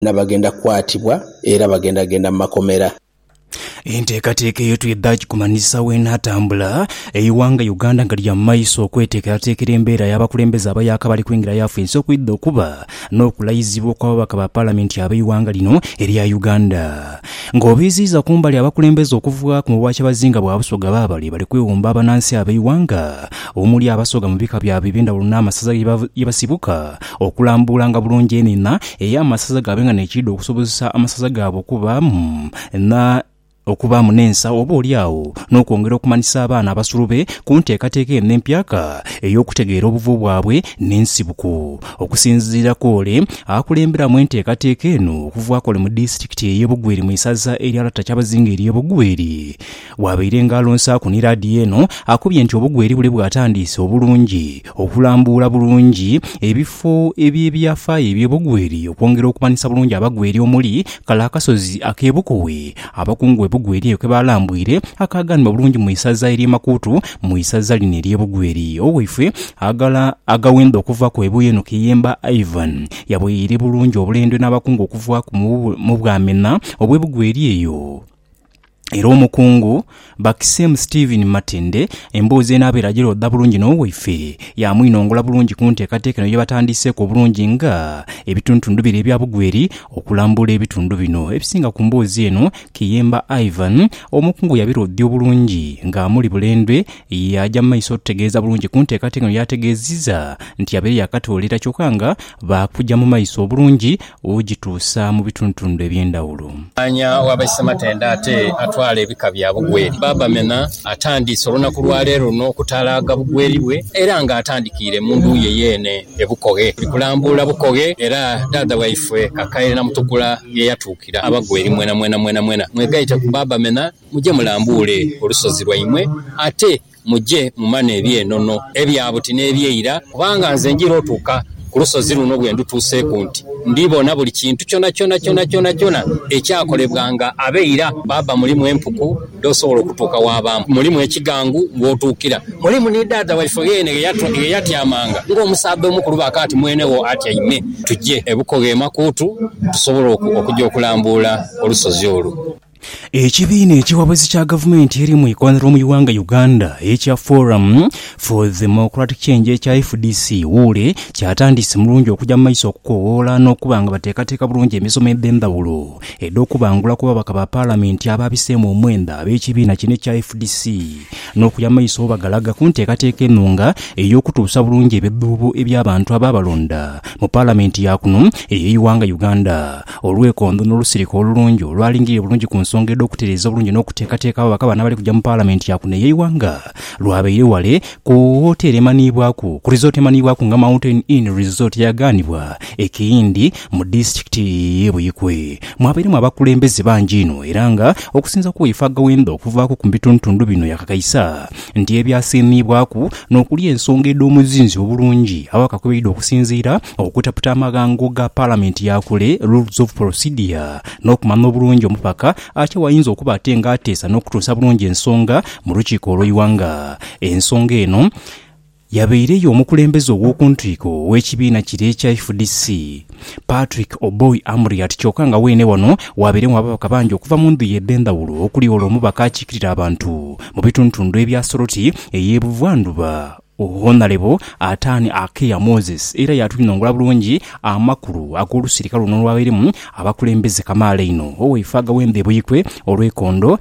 na bagenda kwatibwa era bagenda genda mu makomera. Enteekateeka eyo twidha gikumanyisa w'enaatambula, eighanga Uganda nga lya mu maiso okweteekerateekera embeera y'abakulembeze abayaaka abali kwingira yafesi okwidha okuba n'okulayizibwa okw'ababaka ba Palamenti ab'eighanga lino erya Uganda. Ng'obiziiza ku mbali abakulembeze okuva mu bwakyabazinga bwa Busoga baabale bali kwewumba abanansi ab'eighanga omuli Abasoga mu bika byabwe eby'endhawulo n'amasaza ye basibuka Okulambuulanga bulungi enina ey'amasaza gaabe nga n'ekiidhi okusobozesa amasaza gaabwe okubaamu na okubaamu n'ensa oba oli agho n'okwongera okumanyisa abaana abasulube ku nteekateeka eno empyaka ey'okutegeera obuvo bwabwe n'ensibuko. Okusinziira kw'ole akulemberamu enteekateeka eno okuva kw'ole mu disitikiti ey'e Bugweri mu isaza erya Lata Kyabazinga ery'e Bugweri, Bw'abaire nga alonsaaku ni laadiyo eno, akubye nti obugweri bule bwatandiise obulungi okulambuula bulungi ebifo eby'ebyafaayo eby'obugweri okwongera okumanyisa bulungi abagweri omuli kale akasozi ak'e Bukowe abakungu be bugweri eyo ke baalambwire akaaganibwa bulungi mu isaza ery'e Makuutu mu isaza lino ery'e Bugweri. Owaife aghala agawendo okuva ku Ebuyo eno Kiyemba Ivan yaboyeire bulungi obulendo n'abakungu okuva mu Bwamena obw'e Bugweri eyo. Era Omukungu Bakisemu Stephen Matende emboozi eno abeera agiroodha bulungi n'owaife, yaamwinongola bulungi ku nteekateeka eno gye batandiiseeku obulungi nga ebituntundu bire ebya Bugweri. Okulambula ebitundu bino ebisinga ku mboozi eno, Kiyemba Ivan, Omukungu yabiroodhya obulungi ng'amuli Bulendwe, yaaja mu maiso otutegeeza bulungi ku nteekateeka eno yaategeezizza nti yabaire yaakatoolera kyokka nga baakugya mu maiso obulungi w'ogituusa mu bitundutundhu eby'endhawulo. Mwanya wa Baisematendhe ate atwala ebika bya Bugweri, Bbaabamena atandiise olunaku lwa leero luno okutalaaga Bugweri bwe era nga atandikiire mu ndhu ye yeene e Bukoghe. Ndi kulambuula Bukoghe era dhaadha waifwe Kakaire Namutukula ye yatuukira Abagweri. Mwenamwena mwenamwena mwegaite ku Bbaabamena muje mulambuule olusozi lwaimwe ate. Muje mumane eby'enono, ebya buti n'eby'eira, kubanga nze njira otuuka ku lusozi luno bwe ndutuuseeku nti ndibona buli kintu kyonakyona kyonakyona ekyakolebwa nga ab'eira baaba. Mulimu empuku dh'osobola okutuuka waabaamu, mulimu ekigangu w'otuukira, mulimu ni dhaadha waife yeene ghe yatyamanga ng'omusaadha omukulu ba kaati mwene wo atyaime. Tuje e Bukoga e Makuutu tusobole okuja okulambuula olusozi olwo. Ekibiina ekiwabuzi kya gavumenti eri mu ikoonhiro mu ighanga Uganda ekya Forum for Democratic Change ekya fdc wuule kyatandise mulungi okuja mu maiso okukowoola n'okuba nga bateekateeka bulungi emisomo edh'endhawulo edh'okubangula ku babaka ba palamenti abaabiseemu omwenda ab'ekibiina kino ekya fdc n'okuya mu maiso bwebagalaga ku nteekateeka enhunga ey'okutuusa bulungi ebidhuubo eby'abantu abaabalonda mu palamenti yaakuno ey'eighanga Uganda. Olwekondo n'olusirika olulungi olwalingirire bulungi ku nsonga edh'okutereeza obulungi n'okuteekateeka abo bakabana abali kuja mu Palamenti ya kuno ey'eighanga, lwabaire ghale ku woteeri emanhiibwaku ku Resort emanhiibwaku nga Mountain Inn Resort eyagaanibwa e Kiyindi mu disitulikiti y'e Buikwe. Mwabairemu abakulembeze bangi inho era nga okusinza ku Waifaaga Wendha okuvaaku ku bitundutundu bino yakakaisa nti ebyasiimiibwaku n'okuli ensonga edh'omuzinzi obulungi awa kakweidho okusinziira okutaputa amaghango ga Palamenti ya kule, Rules of Procedure, n'okumanya obulungi omupaka atya wayinza okuba ate nga ateesa n'okutuusa bulungi ensonga mu lukiiko olw'eighanga. Ensonga eno. Yabaire ye omukulembeze ow'oku ntwiko ow'ekibiina kire ekya fdc, Patrick Oboi Amuriat kyoka nga weene wano waabairegho ababaka bangi okuva mu ndhuyi edh'endhawulo okuli ole omubaka akiikirira abantu mu bitundutundu ebya Soroti ey'e Buvwa ndhuba Honalebo Atani Akea Moses era yaatwinongora bulungi amakulu ag'olusirika luno olwabairemu abakulembeze kamaala einho Oweifaaga w'endha e Buikwe olw'ekondo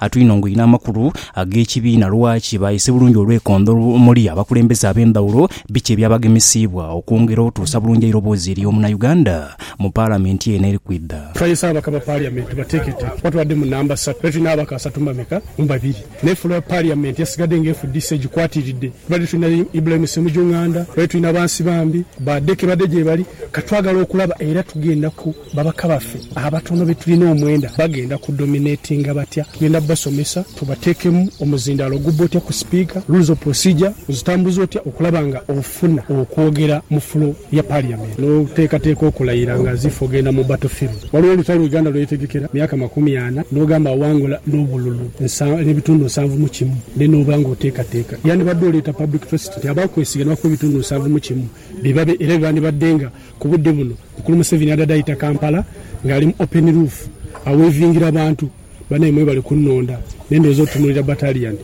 Atwinongoine amakulu ag'ekibiina lwaki baayise bulungi olwekondo omuli abakulembeze ab'endhawulo, biki ebyabagemesiibwa okwongera otuusa bulungi eiroboozi eri omunauganda mu Palamenti eno eri kwidha. Twayese ababaka ba Paliamenti bateeketeeke kuba tubadde mu namba satu era tulina ababaka asatu mu bameka mu babiri naye fula ya Paliamenti yasigadde nga efudise egikwatiridde. Tubadde tulina Ibrahim Ssemuju Nganda, tubadde tulina Bansibambi, ba Deke badde gyebali kati twagala okulaba era tugenda ku. Babaka baffe abatono be tulina omwenda bagenda ku dominatinga batya? Tugenda kubasomesa tubateekemu omuzindaalo ogubba otya ku sipiika, rules of procedure ozitambuza otya okulaba nga ofuna okwogera mu floor ya parliament n'oteekateeka okulayira nga as if ogenda mu battle field. Waliwo olutalo Uganda lwe yetegekera myaka makumi ana n'ogamba awangula n'obululu nsa n'ebitundu nsanvu mu kimu then n'oba nga oteekateeka. Yandibadde oleeta public trust nti abaakwesiga ne bakuwa ebitundu nsanvu mu kimu be babe era be bandibadde nga ku budde buno Mukulu Museveni adade aita Kampala nga ali mu open roof awevingira bantu banaye mwebale kunonda nendowooza otunulira battalion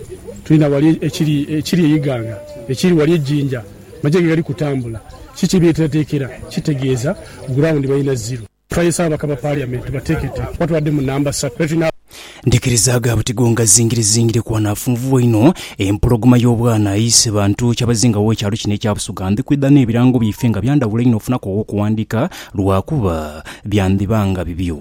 tulina wali ekiri ekiri e Iganga ekiri wali e Jinja maje gegali kutambula kiki byeteratekera kitegeeza ground balina zero. Twayesa ababaka ba parliament batekete kuba tubadde mu namba satu era tulina. Ndikirizaaga buti gonga zingire zingire kuba naafunvubwa inho. Empologoma y'obwana eise bantu kyabazinga w'ekyalo kino ekya Busoga. Ndi kwidha n'ebirango byaife nga bya ndhawulo inho ofunaku aw'okuwandiika lwakuba byandhiba nga bibyo.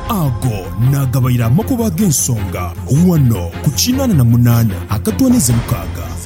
Ago naagabaire amakubo ag'ensonga ghano ku kinaana na munaana akatoonaiza mukaaga.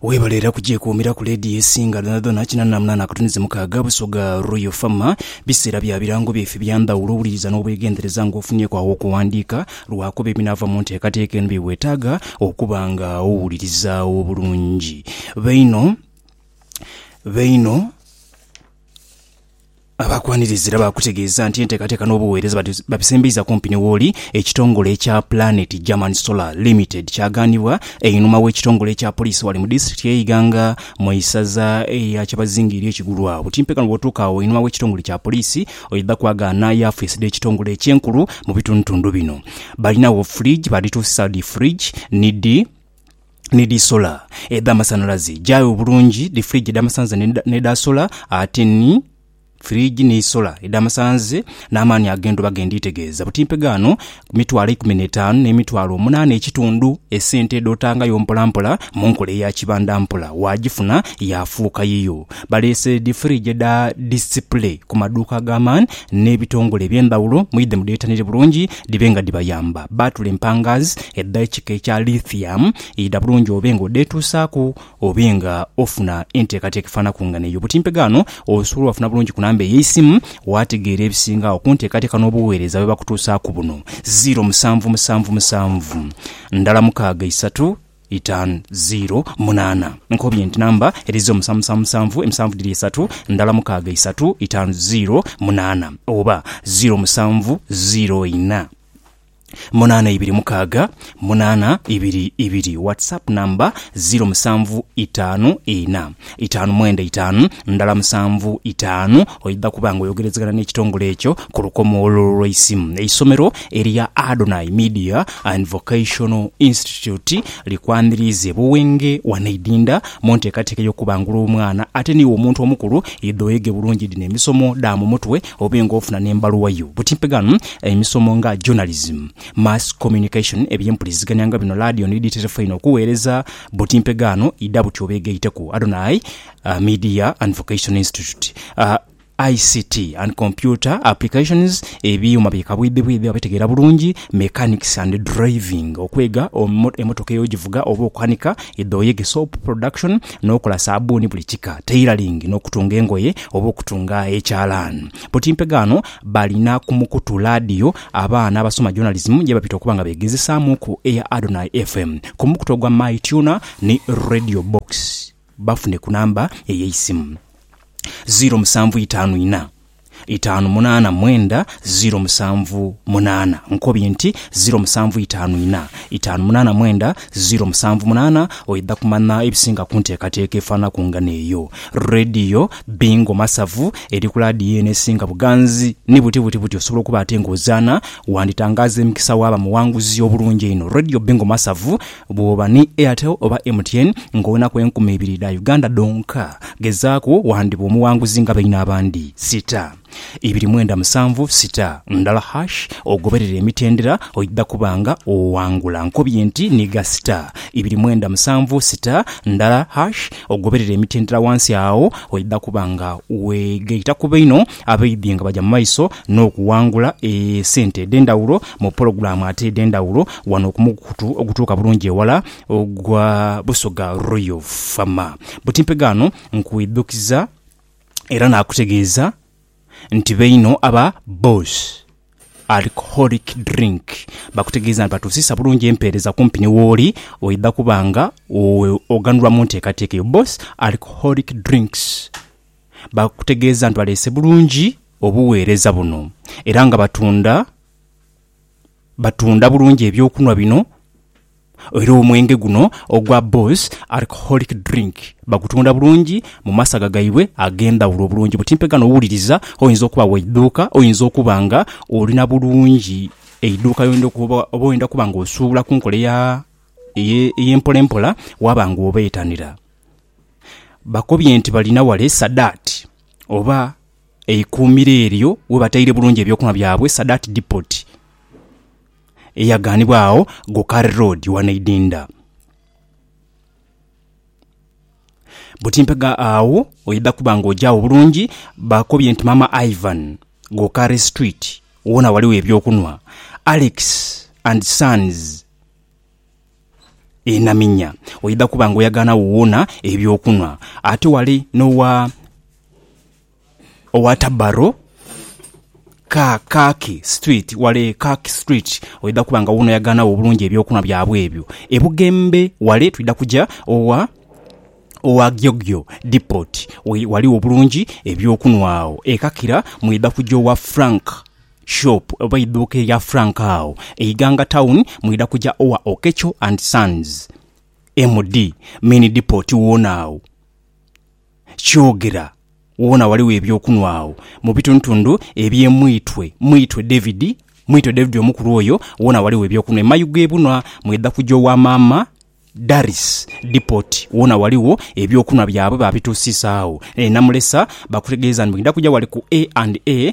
Webale era kugyekuumira ku leediyo esinga dhonadhona kinanamunana akatuni zimukaaga, Busoga Royal FM. Biseera bya birango byaife bya ndhawulo, wuliriza n'obwegendereza nga ofunyeeku agho okuwandiika lwakuba ebinaava mu nteekateeka eno bye weetaaga okuba nga owulirizaawo obulungi. Baino, baino. Abaakwaniriza era baakutegeeza nti enteekateeka n'obuweereza babisembeiza kumpi ni wooli ekitongole ekya Planet German Solar Limited kyagaanibwa einhuma w'ekitongole ekya poliisi wali mu disitulikiti y'e Iganga mu isaza lya Kyabazinga ery'e Kigulu agho Timpekano bw'otuuka agho einhuma w'ekitongole kya poliisi oidha kwagaana yaafiisi dh'ekitongole ekyo enkulu mu bitundutundu bino Balinagho fridge baadhituusisa dhi fridge ni dhi ni dhi sola edh'amasanhalaze, gyaaghe obulungi dhi fridge edh'amasanhalaze n'edha sola, ate ni fridge ni sola edh'amasanhalaze n'amaani ag'endhuba ge ndiitegeeza buti mpegaano ku mitwalo eikumi n'etaanu n'emitwalo omunaana ekitundu. Esente dh'otangayo mpolampola mu nkola eya kibanda mpola waagifuna yaafuuka yiyo. Baleese dhi fridge edha display ku maduuka ag'amaani n'ebitongole eby'endhawulo mwidhe mudheetanire bulungi. Dhibe nga dhibayamba. Baatula empangaazi edha ekika ekya lithium idha bulungi obe nga odheetuusaaku obe nga ofuna enteekateeka efaanaku nga n'eyo. Butimpe ghano osobola obafuna bulungi ku namba ey'eisimu waategeera ebisingagho ku nteekateeka n'obugheereza bwe bakutuusaaku buno, ziiro musanvu musanvu musanvu ndala mukaaga isatu, Itan. Ziiro, munaana. Nkobye nti namba edhize omusamusa musanvu, emusanvu dhiri isatu, ndala mukaaga isatu, itan. Ziiro, munaana. Oba, ziiro musanvu, ziiro ina, munaana ibiri mukaaga, munaana ibiri ibiri. WhatsApp number, ziiro musanvu itaanu ina. Itaanu mwenda itaanu ndala musanvu itaanu, oidha kuba nga oyogerezegana n'ekitongole ekyo ku lukomo olwo olw'eisimu. Eisomero erya Adonai Media and Vocational Institute likwaniriize buwenge wano Idinda mu nteekateeka y'okubangula omwana ate niiwe omuntu omukulu idha oyege bulungi dhino emisomo dha mu mutwe obe nga ofuna n'embaluwa yo butimpegano emisomo nga Journalism, Mass Communication, eby'empuliziganya nga bino laadiyo ni dhi terefaini okuweereza Buti mpegaano idha buti obeegaiteku Adonai Media and Vocational Institute, ICT and Computer Applications, ebyuuma bye kabwidhibwidhi abategeera bulungi, Mechanics and Driving, okwega emotoka ey'ogivuga oba okukanika, edhooyege, Soap Production, n'okola saabbuuni buli kika, Tailoring, n'okutunga engoye oba okutunga ekyalaani. Buti mpegaano balina ku mukutu laadiyo Abaana abasoma Journalism ye bapita okuba nga beegezesaamuuku eya Adonai FM ku mukutu ogwa My Tuner ni Radio Box. Bafune ku namba ey'eisimu, ziiro musanvu itaanu inha, itaanu munaana mwenda ziiro musanvu munaana. Nkobye nti ziiro musanvu itaanu inha, itaanu munaana mwenda ziiro musanvu munaana oidha kumanya ebisinga ku nteekateeka efaanana ku ngano eyo. Radio. Bingo masavu eri ku laadiyo eno esinga buganzi. Ni buti buti buti osobola okuba ate ng'ozaana. Wanditangaaza emikisa waaba muwanguzi obulungi einho. Radio Bingo masavu bw'oba ni Airtel oba MTN ng'owenaku enkumi ibiri dha Uganda dhonka. Gezaaku wandiba omuwanguzi nga baino abandi. Sita. Ibiri mwenda musanvu sita ndala hash ogoberere emitendera oidha kuba nga owangula. Nkobye nti nhiga sita ibiri mwenda musanvu sita ndala hash ogoberere emitendera wansi agho oidha kuba nga wegaita ku baino abaidhi nga baja mu maiso n'okuwangula esente edhendhawulo mu pologulamu ate edhendhawulo wano ku mukutu ogutuuka bulungi ewala ogwa Busoga Royal Fama. Buti mpegano nkwidhukiza. era naakutegeeza nti baino aba Boss Alcoholic Drink bakutegeeza nti batuusiisa bulungi empeereza kumpi ni wooli oidha kuba nga oghanulwa mu nteekateeka eyo. Boss Alcoholic Drinks bakutegeeza nti baleese bulungi obuweereza buno era nga batunda. batunda bulungi eby'okunhwa bino era omwenge guno ogwa Boss Alcoholic Drink bagutunda bulungi mu masaga gaibwe ag'endhaghulo bulungi buti mpe ghano wuliriza oyinza okuba wa idhuuka, oyinza okuba nga oli na bulungi eidhuuka ly'oyenda okuba oba oyenda okuba nga osuubula ku nkola eya ey'empolampola waaba nga obeetanira. Bakobye nti balina ghale Sadat oba. Eikuumiro eryo webataire bulungi ebyokunhwa byabwe Sadat Depot eyaganibwa agho Gokar Road wano Idinda. Butimpega agho oidha kuba nga oja agho bulungi bakobye nti Maama Ivan, Gokar Street, wona ghaligho ebyokunhwa Alex and Sons enaminya oidha kuba nga oyagaanagho woona eby'okunhwa. Ate wali n'owa, owa Tabarro, Ka, Kaki Street, wale e Kaki Street, oidha kuba nga woona oyagaanagho obulungi eby'okunhwa byabwe ebyo. E Bugembe wale twidha kuja owa, owa Gyogyo Depot, ghaligho bulungi eby'okunhwa agho. E Kakira mwidha kuja owa Frank. shop oba eiduuka erya Frank agho e Iganga town mwidha kuja owa Okecho and sons MD main depot wona agho Kyogera wona ghaligho ebyokunwa agho mubitundutundu ebye Mwitwe Mwitwe David Mwitwe David omukulu oyo wona ghaligho ebyokunwa e Mayuge ebunwa mwidha kuja owa maama Daris depot wona ghaligho ebyokunwa byabwe babitusiisa agho e Namulesa bakutegeeza nti mwidha kuja ghale ku A and A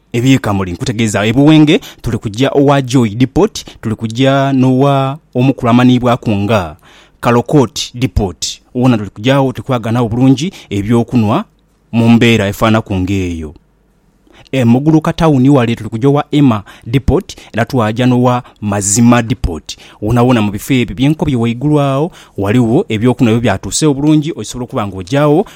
Eby'ekamuli nkutegeeza ebuwenge tuli kuja owa Joy Depot, tuli kuja n'owa omukulu amanhiibwaku nga Kalokot Depot. Wona tuli kuja agho tuli kwagala nabo bulungi eby'okunhwa mu mbeera efaanaku ng'eyo. E Muguluka tawuni wale tuli kuja owa Emma Depot era twaja n'owa Mazima Depot. Wonawona mu bifo ebyo bye nkobye ghaigulu agho, ghaligho eby'okunhwa ebyo byatuusa obulungi osobola okuba ng'oja agho.